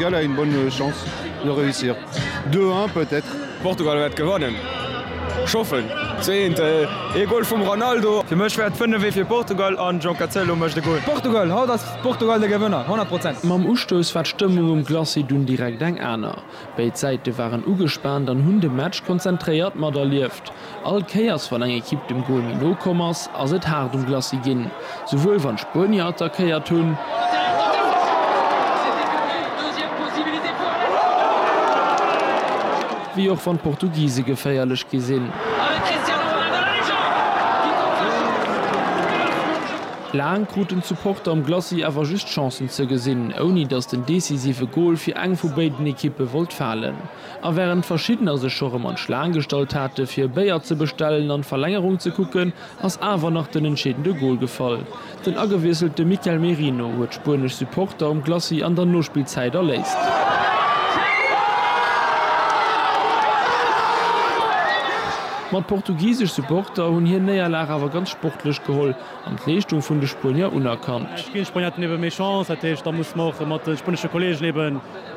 Elle a une bonne chance de réussir 2 1 peut être. Portugal wäert gewannen, schoffen 2 1 ee Goal vum Ronaldo. Fir mech wäert 5 ee fir Portugal an João Cancelo mécht e Goal. Portugal, haut ass Portugal de Gewënner 100 Prozent. Mam Ustouss war d'Stëmmung um Glacis dunn direkt eng aner. Béid Säite waren ugespaant an hunn de Match konzentréiert materlieft. All Kéiers wann eng Ekipp dem Gol méi no komm ass, ass et haart um Glacis ginn, souwuel wann d'Spuenier attackéiert hunn, wéi och wann d'Portugise geféierlech gi sinn. Laang kruten d'Supporter um Glacis awer just Chancen ze gesinn, ouni datt den decisive Gol fir eng vu béiden Ekippe wollt falen. A während verschiddener sech scho rem an d'Schlaang gestallt hate fir Béier ze bestellen an d'Verlängerung ze kucken, ass awer nach den entscheedende Gol gefall. Den agewiesselte Mikel Merino huet spuenesch Supporter um Glacis an der Nospillzäit erléist. Ma d'portugisesch Supporter hunn hir Néierlag awer ganz sportlech geholl an d'Leeschtung vun de Spuenier unerkannt.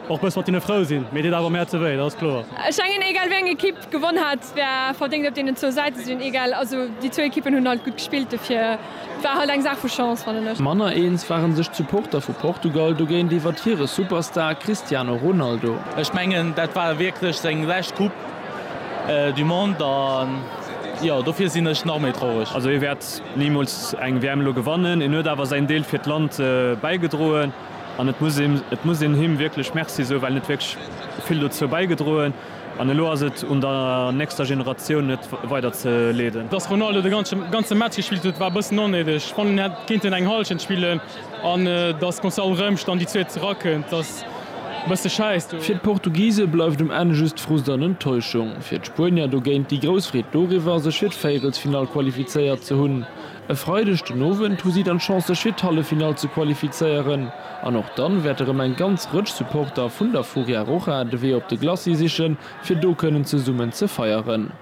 Och bëss mat hinne frou sinn, mee deet awer mäer zewéi, dat ass kloer. Ech mengen egal wéi eng Ekipp gewonn hat, war verdéngt op deenen zwou Säite sinn egal, also déi zwou Ekippen hunn halt gutt gespillt, dofir et war halt eng Saach vu Chance fannen ech. Manner eens ware sech d'Supporter vu Portugal dogéint iwwert hire Superstar Cristiano Ronaldo. Ech mengen dat war wierklech seng lescht Coupe du Monde a jo dofir sinn ech nach méi traureg. Also hie wäert nimools eng WM elo gewannen, en huet awer säin Deel fir d'Land bäigedroen. An et muss een, et muss een him wierklech Merci soen, well en huet wierklech vill dozou bäigedroen. An elo ass et un der nächster Generatioun, et weiderzeleeden. Dass Ronaldo de ganze Match gespillt huet, war e bëssen onnéideg. Ech fannen, en hätt kéinten eng Hallschent spillen. An dass Gonçalo Ramos dann déi zweet erakënnt, dat ass e bësse schäiss. Fir d'Portugise bleift um Enn just Frust an Enttäuschung. Fir d'Spuenier dogéint déi grouss Freed doriwwer, sech fir d'Véierelsfinall qualifizéiert ze hunn. E Freideg den Owend hu si dann d'Chance sech fir d'Halleffinall ze qualifizéieren an och dann wäerte rëm eng ganz Rëtsch Supporter vun der Furia Roja de Wee op de Glacis sichen, fir do kënnen zesummen ze feieren.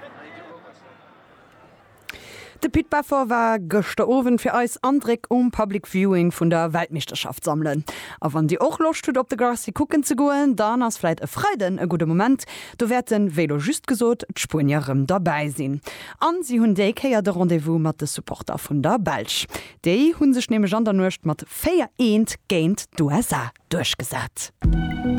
De Pit Beffer war gëschter Owend fir eis Andréck um Public Viewing vun der Weltmeeschterschaft sammelen. A wann dir och Loscht hutt op de Glacis kucken ze goen, dann ass vläit e Freiden e gudde Moment. Do wäerten, wéi elo just gesot, d'Spuenier rëm derbäi sinn. A si hunn déi Kéier de Rendez-vous mat de Supporter vun der Belsch. Déi hu sech nämlech an der Nuecht mat 4 Eent géint d'USA duerchgesat.